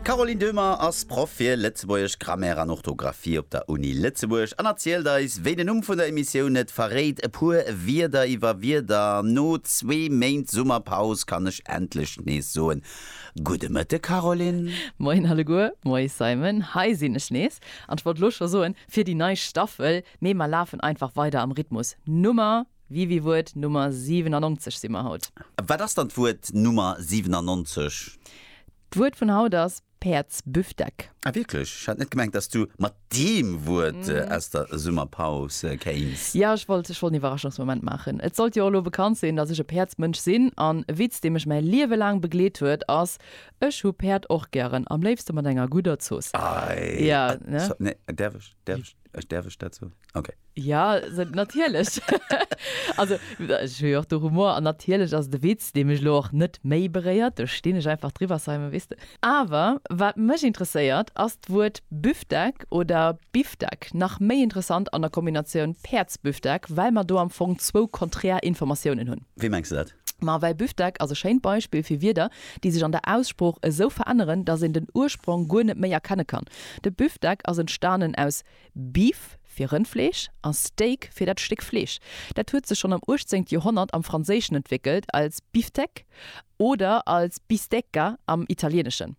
D'Caroline Döhmer ass Proff fir Lëtzebuergesch, Grammaire an Orthografie op der Uni Lëtzebuerg an erzielt eis, wéi den Numm vun der Emissioun et verréit, e puer Wierder iwwer Wierder. No zwee Méint Summerpaus kann ech endlech nees soen, Gudde Mëtte Caroline! Moien alleguer, moies Simon, hei sinn ech nees an ech wollt elo scho soen, fir déi nei Staffel, mee mer lafen einfach weider am Rhythmus Nummer. Wiwi Wuert Nummer 97 si mer haut. Wat ass dann d'Wuert Nummer 97? D'Wuert vun haut ass Päerdsbüfdeck. Ah wierklech? Ech hat net gemengt dass du mat deem Wuert aus der Summerpaus kéins. Jo, ech wollt ech wollt en Iwwerraschungsmoment maachen. Et sollt jo och elo bekannt sinn, dass ech e Päerdsmënsch sinn. An e Witz dee mech mäi Liewe laang begleet huet ass, Ech hu Päerd och gären, am léifste mat enger gudder Zooss. Ei, jo, ne? Däerf ech? Däerf ech? Ech däerf ech dat soen? Okay. Ja, natierlech. Also, ech hu jo och de Humor an natierlech ass et e Witz, dee mech elo och net méi beréiert. Do stinn ech einfach driwwer, Simon, weess de. Awer wat mech interesséiert, ass d'Wuert Büftek oder Biftek, nach méi interessant an der Kombinatioun Päerdsbüftek, well mer do am Fong zwou konträr Informatiounen hunn. Wéi mengs de dat? Ma well Büftek ass e schéint Beispill fir Wierder, déi sech an der Aussprooch esou veränneren, datt een den Ursprong guer net méi erkenne kann. De Büftek ass entstanen aus Beef, fir Rëndfleesch, a Steak, fir dat Stéck Fleesch. Dat huet sech schonn am 18. Joerhonnert am Franséischen entwéckelt als Biftec oder als Bistecca am Italieeneschen.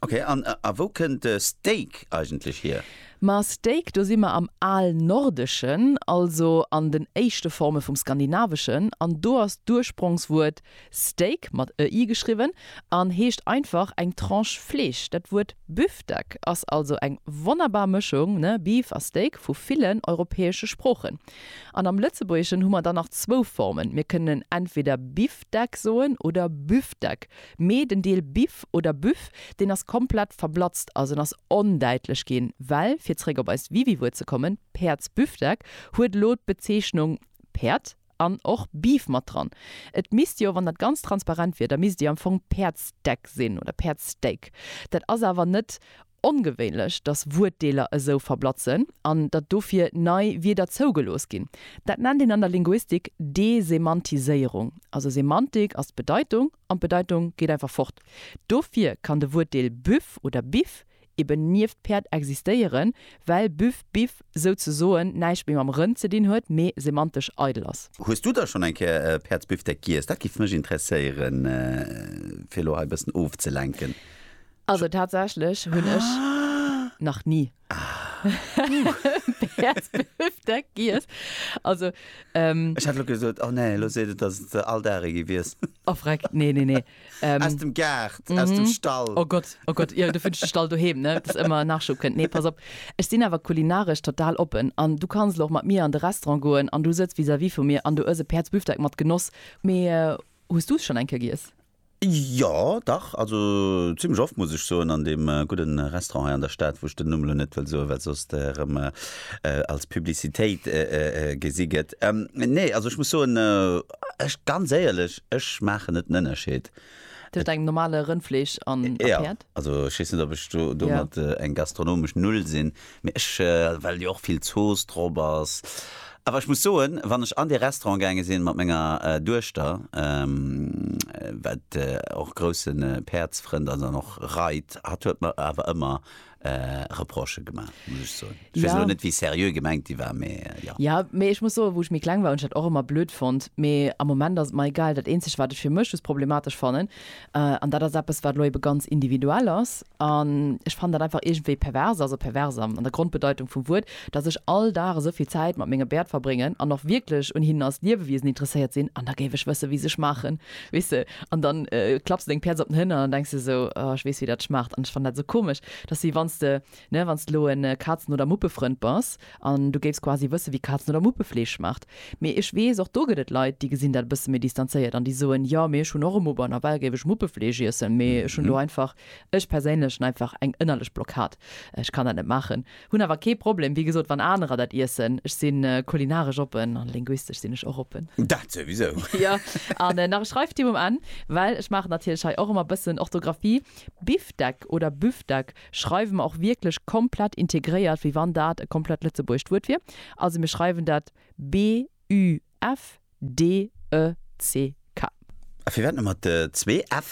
Okay, an a wou kënnt de Steak eigentlech hier? Ma Steak, do si mer am Alnordeschen, also an den éischte Forme vum Skandinaveschen, an do ass d'Ursprongswuert Steak, mat e i geschriwwen, an heescht einfach eng Tranche Fleesch. Dat Wuert Büftek ass also eng wonnerbar Mëschung, ne, Beef a Steak, vu villen europäesche Sproochen. An am Lëtzebuergeschen hu mer dann nach zwou Formen, mir kënnen entweder Bifdeck soen oder Büftek. Mee den Deel Biff oder Büff, deen ass komplett verblatzt, also en ass ondäitlech ginn, well, fir zréck op eist Wiwi-Wuert ze kommen, Päerdsbüffdeck huet elo d'Bezeechnung Päerd an och Beef mat dran. Et misst jo, wann dat ganz transparent wier, da misst déi am Fong Päerdsdeck sinn oder Päerdssteak. Dat ass awer net Ongewéinlech, datt Wuertdeeler esou verblatzen an datt dofir nei Wierder zougelooss ginn. Dat nennt een an der Linguistik Desemantiséierung. Also Semantik ass d'Bedeitung an d'Bedeitung geet einfach fort. Dofir kann de Wuertdeel Büff oder Biff eben nieft Päerd existéieren, well Büff, Biff souzesoen näischt méi mam Rënn ze dinn huet, mee semantesch eidel ass. Hues du da schonn eng Kéier e Päerdsbiffdeck giess? Dat géif mech interesséieren, fir elo hei e bëssen ofzelenken. Also tatsächlech hunn ech nach ni Päerdsbifdeck giess. Also ähm. Ech hat elo gesot, oh nee, elo seet et, dass et se all Dag e gewiesst. Oh freck, nee, nee, nee. Ähm. Aus dem Gaart, aus dem Stall. Oh Gott, oh Gott, jo, du fënns de Stall doheem, ne, dass ëmmer Nachschub kënnt. Nee, pass op, ech sinn awer kulinaresch total oppen an du kanns elo och mat mir an de Restaurant goen an du sëtz vis-à-vis vu mir an du ëss e Päerdsbifdeck mat Genoss. Mee hues du es schonn eng Kéier giess? Jo, dach, also zimmlech oft, muss ech soen, an deem gudde Restaurant hei an der Stad, wou ech den Numm elo net wëll soen, well soss dat erëm als Publicitéit gesi gëtt. Nee, also ech muss soen, ech, ganz éierlech, ech maachen net den Ënnerscheed. Tëscht engem normale Rëndfleesch an a Päerd? Jo, also ech weess net, ob ech do domat eng gastronomesch Null sinn, Mee ech, well jo och vill Zooss drop ass. Awer ech muss soen, wann ech an dee Restaurant gaange sinn mat menger Duechter, wat och grousse Päerdsfrënd ass an och reit, hatt huet mer awer ëmmer Reprochë gemaach, muss ech soen. Ech weess elo net, wéi seriö gemengt déi war, mee jo. Jo, mee ech muss soen, wou ech méi kleng war, hunn ech dat och ëmmer blöd fonnt. Mee am Moment ass et mer egal. Dat eenzegt, wat ech fir mech just problematesch fannen, An dat ass eppes, wat elo ebe ganz individuell ass. An ech fannen dat einfach iergendwéi pervers, also pervers an der Grondbedeitung vum Wuert, datt ech all Dag esou vill Zäit mat menge Bäert verbréngen an och wierklech un hinnen als Liewewiesen interesséiert sinn, an da géif ech wësse wéi se schmaachen, weess de. An da klapps de deng Pièce op den Hënner an da denks de esou, oh ech weess wéi dat schmaacht. An ech fannen dat esou komesch, datt si, wann s de Ne, wann s de elo e Kazen oder Muppefrënd bass an du géifs quasi wësse wéi Kazen oder Muppe Fleesch schmaacht. Mee ech weess, och do gëtt et Leit, déi gesinn dat e bësse méi distanzéiert an déi soen, jo, mee ech hunn och e Mupp an nawell géif ech Muppefleesch iessen, mee ech hunn do einfach, ech perséinlech hunn einfach eng ënnerlech Blockad, ech kann dat net maachen. Hunn awer kee Problem, wéi gesot, wann anerer dat iessen. Ech si kulinaresch oppen an linguistesch sinn ech och oppen. Dat souwisou! Jo, an nach e Schreiftipp um Enn, well ech maachen natierlech hei och ëmmer e bëssen Orthografie, Bifdeck oder Büfdeck, schreiwe mer och wierklech komplett integréiert, wéi wann dat e komplett lëtzebuergescht Wuert wier. Also mir schreiwen dat BÜFDECK. A firwat nëmme zwee F?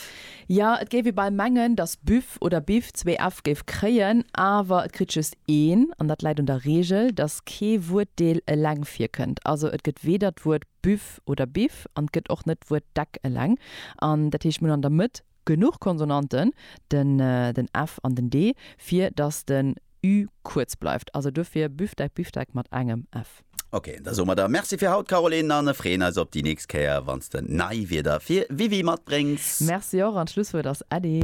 Jo, et géif ee bal mengen, datt Büff oder Biff zwee F géif kréien, awer et kritt just een. An dat läit un der Reegel, datt kee Wuertdeel eleng virkënnt. Also et gëtt weder d'Wuert Büff oder Biff an et gëtt och net d'Wuert Deck eleng. An dat heescht, mir hunn an der Mëtt. Genuch Konsonanten, den ë, den f an den d, fir datt den ü kuerz bleift. Also dofir Büftek, Biftek mat engem f. Ok, da soe mer der Merci fir haut, Caroline, an ë freeën eis op déi nächst Kéier, wann s de nei Wierder fir Wiwi matbréngs. Merci och, an d'Schlusswuert ass Äddi.